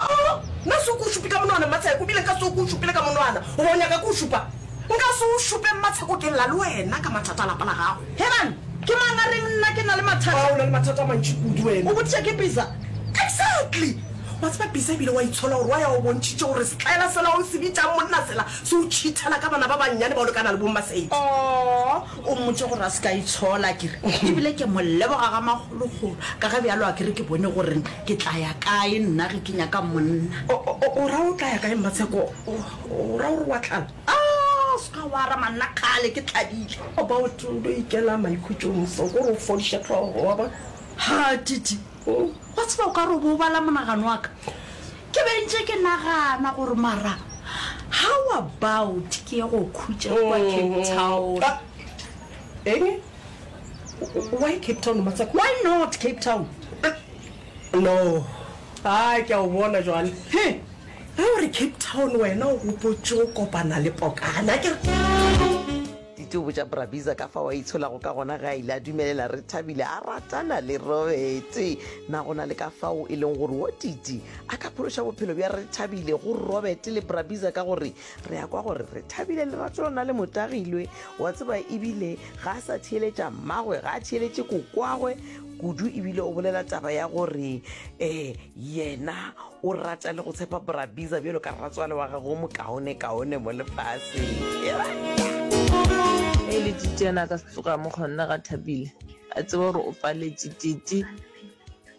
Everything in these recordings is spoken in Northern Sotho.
Oh, nna se o ke o šupe ka monwana, Mmatsheko, bile nka se o ke o šupile ka monwana. Goba o nyaka ke o šupa? Nka se o šupe, Mmatsheko, ke lla le wena ka mathata a lapa la gago. Herman, ke mang a reng nna ke na le mathata? Ba, o na le mathata a mantši kudu wena. O botšiša ke Bisa? Exactly! Wa tseba Bisa e bile wa itshola gore wa ya o bontšhitše gore setlaela sela o se bitšang monna sela se o tšhithela ka bana ba bannyane bao le ka na le bo Mmasei. Oh! O mmotše gore a se ka itshola, a kere, e bile ke mo leboga ga magologolo, ka ge bjalo a kere ke bone gore ke tla ya kae nna ge ke nyaka monna. O, o, o ra o tla ya kae, Mmatsheko? O, o ra gore wa tlala? A, se ka wa arama nna, kgale ke tladile. About o no ikela maikhutšong so ko re o fodiše hlogo, wa bona. Ha, Titi, wa tseba o ka re o bo o bala monagano wa ka. Ke be ntše ke nagana gore mara how about ke ye go khutša kwa Cape Town. Eng? Why Cape Town motswako? Why not Cape Town? No. A ke a o bona jwale. He, ge o re Cape Town wena o gopotše go kopana le Pokana akere? Titi o botša Brabiza ka fao a itsholago ka gona ge a ile a dumelela re thabile a ratana le Robete. Na go na le ka fao e leng gore wo Titi a ka phološa bophelo bja re thabile go Robete le Brabiza ka gore re ya kwa gore re thabile lerato lona le motagilwe wa tseba ebile ga a sa theeletša mmagwe ga a theeletše kokwagwe kudu ebile o bolela taba ya gore um Yena o rata le go tshepa Bra Biza bjalo ka rratswale wa gagwe o mokaone-kaone mo lefaseng. E le Titi yena a ka se tsoga mo kgonne ga Thabile a tseba gore o paletše. Titi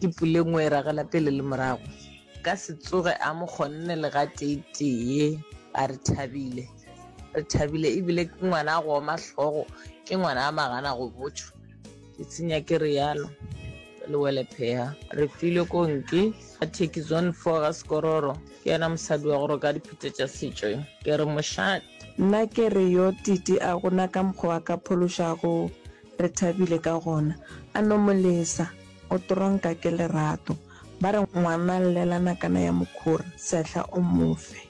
ke pulengwe e ragela pele le morago, ka se tsoge a mo kgonne le ga tee-tee. A re Thabile, re Thabile ebile ke ngwana a go oma hlogo, ke ngwana a magana go botšwa. Ke tsenya ke realo le wele pheha re file konke a theki zone four ga sekororo ke yena mosadi wa gore ka diphete tša setšo ke re mošate Nna ke re yo Titi a gona ka mokgwa wa ka phološago re thabile ka gona a no mo lesa o tronka ke lerato ba re ngwana llela nakana ya mokhura sehla o mofe.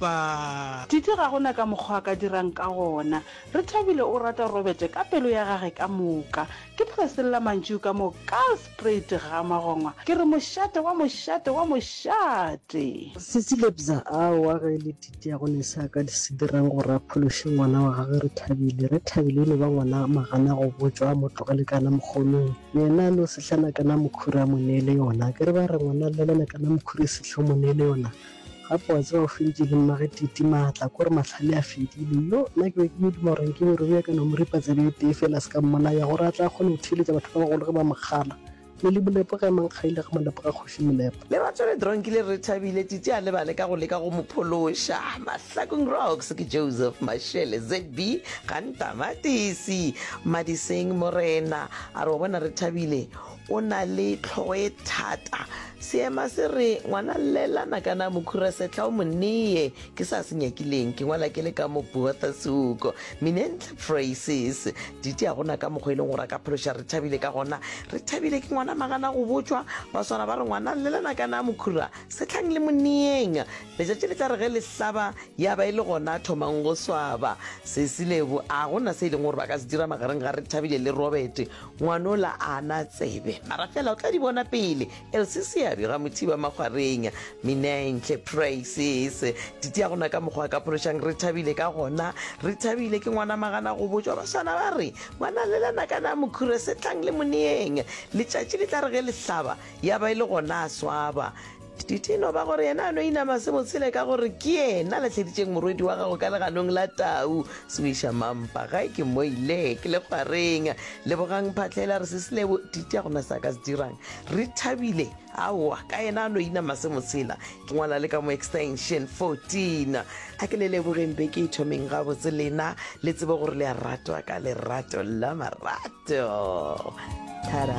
Ba. Titi ga go na ka mokgwa a ka dirang ka gona. Rethabile o rata Robert ka pelo ya gage ka moka. Ke phreselela mantšu ka mo Karlsprate ga magongwa, ke re, Mošate wa mošate wa mošate! Cecile Bza, Aowa, ge e le Titi ga go ne se a ka se dirang gore a phološe ngwana wa gagwe Rethabile. Rethabile e no ba ngwana a magana go botšwa a mo tlogele kana mokgonong. Yena a no sehlana kana mokhuri a mo neele yona. Akere ba re ngwana a lelana kana mokhuri e sehla o mo neele yona? Gape wa tseba o feditše le mmage Titi maatla, ko re mahlale a fedile. Yo, nna ke be ke yo duma gore nke Morero ya ka no mo ripa tsebe e tee feela a se ka mmolaya, gore a tle a kgone go theeletša batho ba bagolo ge ba mo kgala. Le le Molepo ge a mang kgaile ga Molepo ga Kgoši Molepo. Lerato le Dronkile re thabile Titi a lebale ka go leka go mo phološa. Mahlakong Rocks ke Joseph Mashele, ZB, Gantama, Tisi, Madiseng, Morena, a re wa bona re thabile, O na le tlhogo e thata. Seema se re, Ngwana llelana ka na mokhura sehla o mo neye. Ke sa se nyakileng, ke ngwala ke le ka mo Botha Suko. Minentle Phrases. Didi a gona ka mokgwa e leng gore a ka phološa Rethabile ka gona. Rethabile ke ngwana magana go botšwa. Ba swara ba re, Ngwana llelana ka na mokhura sehlang le mo neyeng. Letšatši le tla re ge le hlaba ya ba e le gona thomang go swaba. Sesi le bo a gona se e leng gore ba ka se dira magareng ga Rethabile le Robert. Ngwanola a na tsebe, mara fela o tla di bona pele. Elsie Seabi, Ramothiba Makgwareng, Minenhle Praises, Titi a gona ka mokgwa a ka phološang Rethabile ka gona. Rethabile ke ngwana magana go botšwa baswana ba re, Ngwana le lena ka na Mokhure se tlang le moneeng. Letšatši le tla re ge le hlaba ya ba e le gona a swaba. Didi no ba gore yena a no inama se botshele ka gore ke yena le tlheditšeng morwedi wa gago ka leganong la tau. Swisha mampa, gae ke moile, ke le kgwareng. Lebogang Phatlhela, re sesilebo, Didi a gona se a ka se dirang. Rethabile, Aowa, ka yena a no inama se motshela. Ke ngwala le ka mo extension 14. A ke le lebogeng be ke e thomeng gabotse lena le tsebe gore le a ratwa ka lerato la marato. Tada!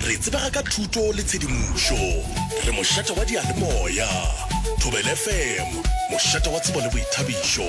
Re tsebega ka thuto le tshedimošo. Re mošate wa diyalemoya. Thobela FM, mošate wa tsebo le boithabišo.